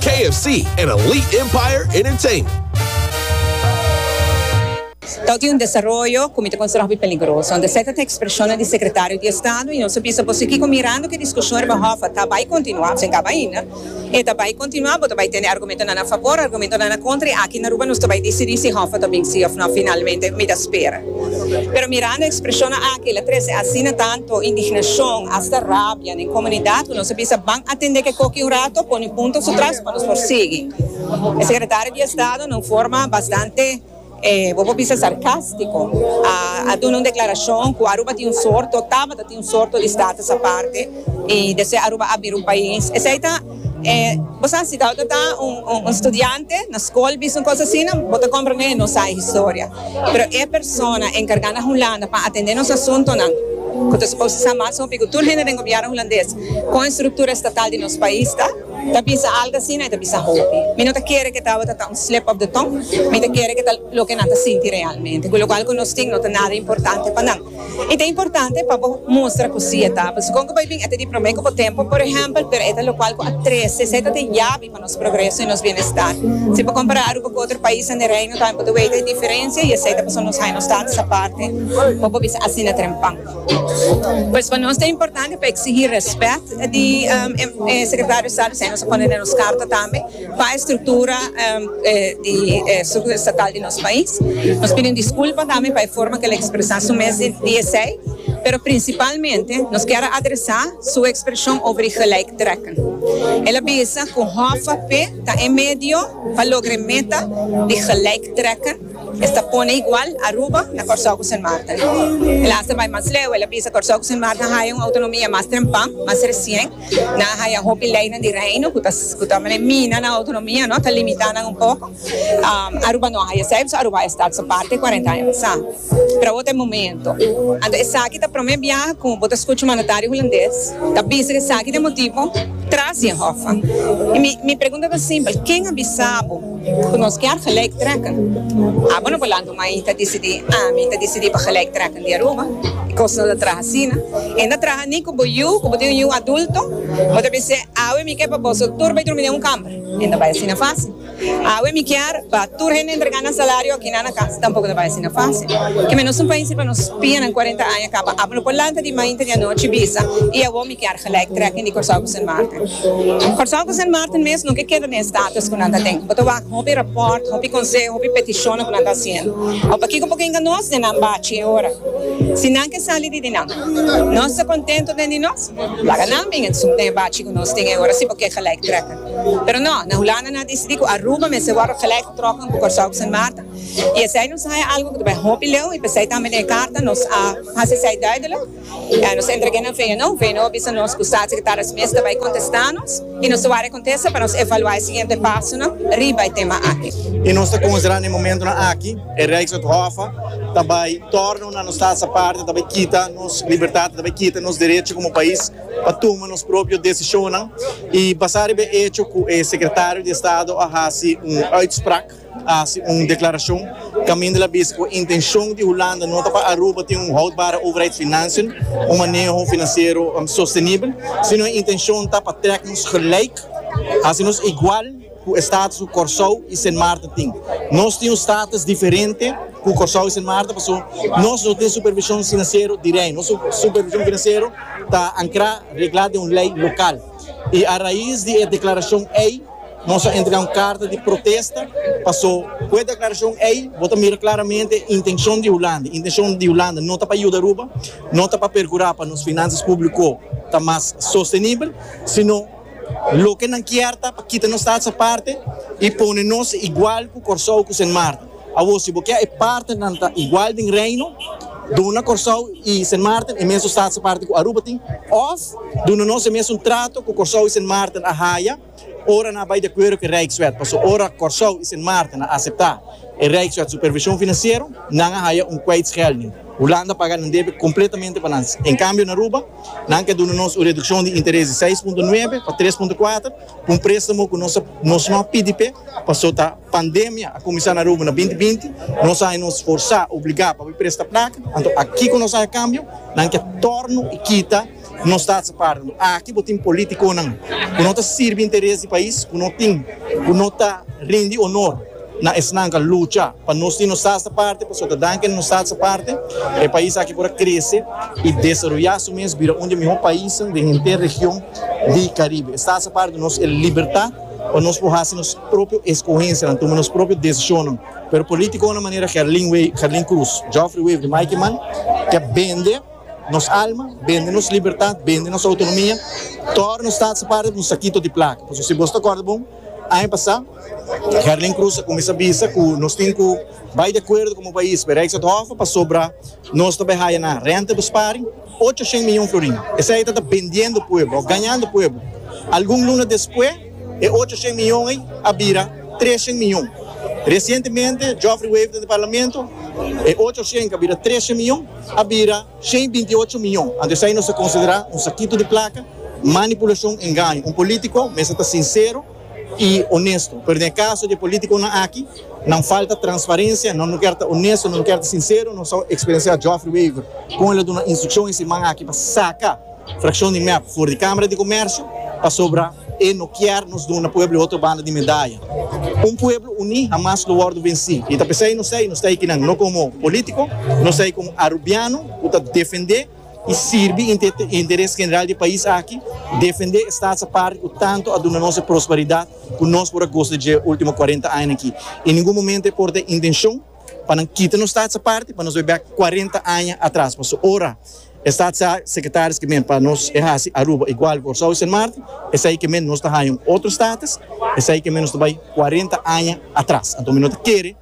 KFC en Elite Empire Entertainment. Tok di un desaroyo ku mi ta konsidera hopi peligroso. Un deserte ta ekspreshonnan di sekretario di estado i nos ta bisa, Bo si kiko mirando ku e diskushon riba hòf a ta bai kontinuá òf si a kaba ainda? E ta bai kontinuá, bo ta bai tende argumentonan a fabor, argumentonan a kontra i aki na Aruba nos ta bai disidí si hòf a ta bin sí òf nò finalmente, mi ta spera. Pero mirando e ekspreshonnan aki el a trese asina tantu indignashon, asta rabia. Den komunidat ku nos a bisa ban atendé ke koki un rato, pone punto su tras pa nos por sigui. E sekretario di estado na un forma bastante, bo por bisa sarkástiko, a duna un deklarashon ku Aruba tin un sorto, tabata tin un sorto di status aparte i despues Aruba a bira un pais. Esei ta. Bo sa si Dauda ta un studiante na skol bisa un kos asina bo ta komprendé nos sa e historia, pero e persona enkargá na Hulanda pa atendé nos asuntonan ku ta suposo sa mas hopi ku tur hende den gobièrnu hulandes kon e struktura estatal di nos pais ta, ta bisa algu asina e ta bisa hopi. Mi no ta kere ku e tabata ta un slip of the tongue, mi ta kere ku ta loke nan ta sinti realmente, ku lokual ku nos tin no ta nada importante pa nan. E ta importante pa bo mustra cu si e ta, pasobra con cu bo a bin e ta di prome cu bo tempo, por ehempel, pero e ta locual cu a trece, esey ta den yabi pa nos progreso y nos bienestar. Si bo compara Aruba cu otro paisnan di Reino, tambe bo ta weta e diferencia y esey ta pasobra nos hay nos tatas aparte, por bo bisa asina trempan. Pues pa nos ta importante pa exigi respet di e Secretario Estado, esey nos a pone den nos carta tambe. Pa e struktura di e struktura estatal di nos pais, nos pidi un diskulpa tambe pa e forma ku el a ekspresá su mes di esei, pero prinsipalmente nos kier a adresá su ekspreshon over e gelijktrekken. El a bisa ku hòfap ta e medio pa logra e meta di gelijktrekken, es ta pone igual Aruba na Kòrsou ku Sint Maarten. El a hasta bai mas leu, el a bisa Kòrsou ku Sint Maarten haya un outonomia mas trempan, mas resien. Nan a haya hopi leynan di Reino cu ta mina nan autonomia, ta limita nan un poco. Aruba no a haya esaki, pasobra Aruba a esta ta parti cuarenta aña pasa. Pero awor ta e momento. Anto esaki ta prome biaha cu bo ta scucha un mandatario hulandes ta bisa cu esaki ta e motibo tras di e Hof. Mi pregunta ta simpel, ken a bisa bo? Ku nos kier gelijk trekken. Abo no por lanta un mai ta disidí, ah, mi ta disidí pa gelijk trekken di Aruba. E kos no ta traha asina. E no ta traha ni ku bo yu, ku bo tin un yu adulto, bo ta bis'é, Awe mi ke pa boso tur bai drumi den un kamber. E no bai asina fásil. Awe mi kier pa tur hende entrega nan salario akinan na kas. Tampoco no bai asina fásil. Ke menos un pais riba nos pianan kuarenta aña kaba. Abo no por lanta di mainta di anochi bisa, i awor mi. Kier gelijktrekking di Kòrsou ku Sint Maarten. Kòrsou ku Sint Maarten mes no ke keda den e status ku nan ta den. Bo ta wak hopi rapòrt, hopi konseo, hopi petishonnan ku nan ta hasiendo. Awe pakiko por kenga nos den nan bachi e ora? Si nan ke sali di di nan, nos ta kontentu den di nos. Laga nan bin esun den e bachi ku nos tin e ora si bo ke gelijktrekking. Pero no, na Hulanda nan a disidí ku Aruba mester wòrdu gelijktrokken ku Kòrsou ku Sint Maarten. I esei nos a haña algu ku ta bai hopi leu i p'esei tambe den e karta nos a hasi esei duidelik. K'en nos a entrega nan fe nou? Fe nou a bisa nos ku Staatssecretaris mes ta bai kontesta nos i nos ta wak rekontesa pa nos evaluá e siguiente pasonan riba e tema aki. I nos ta konsiderá n'e momentunan aki e Rijkswet Hof ta bai tòrna una nos Stats aparte, ta bai kita nos libertat, ta bai kita nos derecho komo pais pa tuma nos propio desishonnan i basá riba e echo ku e Sekretario di Estado a hasi un uitspraak. a hasi un deklarashon kaminda el a bisa ku e intenshon di Hulanda no ta pa Aruba tin un houdbare overheidsfinansiën, un maneho finansiero sostenibel, sino e intenshon ta pa trek nos gelijk, hasi nos igual ku e status ku Kòrsou i Sint Maarten tin. Nos tin un status diferente ku Kòrsou i Sint Maarten paso nos no tin supervishon finansiero di rei. Nos supervishon finansiero ta ankrá, reglá den un lei lokal. I a rais di e deklarashon ei, Nos a entrega un carta di protesta paso cu e declaracion ey bo ta mira claramente intencion di Hulanda. Intencion di Hulanda no ta pa yuda Aruba, no ta pa percura pa nos financias publico ta mas sostenibel, sino loke nan kier ta pa kita nos taxa aparte y pone nos igual cu Corsou cu Sint Maarten. Awor, si bo ke e partenan ta igual den Reino, duna Kòrsou i Sint Maarten e mesun staatse parten ku Aruba tin, òf duna nos e mesun trato ku Kòrsou i Sint Maarten a haya ora nan a bai di akuerdo ku e Rijkswet. Pasobra ora Kòrsou i Sint Maarten a aseptá e Rijkswet supervishon finansiero, nan a haya un kwijtschelding. Hulanda a paga nan debe kompletamente pa nan. En kambio na Aruba, nan ke duna nos un redukshon di interes di seis punto nuebe pa tres punto kuater pa un préstamo ku nos no a pidi p'e paso ta Pandemia a kuminsá na Aruba na binti binti. Nos a haña nos forsá, obligá, pa bai presta plaka. Anto aki ku nos haña kambio, nan ke tòrnu i kita nos tasa sa parti. Anto aki bo tin politikonan ku no ta sirbi interes di pais ku no tin, ku no ta rindi onor na esnan ku a lucha pa nos tin nos tasa sa parti. Pasobra dan ke nos tasa sa parti e pais aki por a krese i desaroyá su mes, bira un di e mihó paisnan den henter region di Karibe. Es tasa sa parti nos e libertat. pa nos por haci nos propio escogencianan, tuma nos propio decisionnan, pero politiconan manera Gerlin Wever, Gerlin Cruz, Geoffrey Wever y Mikey Mann ta bende nos alma, bende nos libertad, bende nos autonomia, tora nos sta haci parti di un saquito di placa. Pasobra si bos ta acorda bon, aña pasa Gerlin Cruz a cuminsa bisa cu nos tin cu bay di acuerdo como pais, pero Rijkswetthoven pasobra nos ta bay haya nan rentabesparing, Ocho shen miyon florin. Esei ta ta bendiendo pueblo of gañando pueblo. Algun luna despues e ocho shen miyon ei a bira tres shen miyon. Recientemente Geoffrey Wever ta den parlamento, e ocho shen cu a bira tres shen miyon a bira shen binti ocho miyon. Anto esei nos ta considera un sakito di placa, manipulacion, engaño. Un politico mester ta sincero. i onesto, pero den e kaso di e politikonan aki, nan falta transparensia, nan no kier ta onesto, nan no kier ta sinsero, nos a eksperensiá Geoffrey Wever kon el a duna instrukshon e siman aki pa saka frakshon di mep for di Kámara di Komèrsio pasobra e no kier nos duna pueblo e otro banda di medaya. Un pueblo uní hamas lo wòrdu vensí i ta p'esei nos ta ei, nos ta ei kinan, no komo polítiko, nos ta ei komo arubiano ku ta defendé, i sirbi interes general di e pais aki, defendé e stats aparte ku tantu a duna nos e prosperidat ku nos por a gosa di dje último kuarenta aña aki. I ningun momento e por ta e intenshon pa nan kita nos stats aparte pa nos bai bèk kuarenta aña atras. Pasobra ora e statssekretaris ke men pa nos e hasi Aruba igual ku Kòrsou i Sint Maarten, esei ke men nos ta haña un otro status, esei ke men nos ta bai kuarenta aña atras. Anto mi no ta kere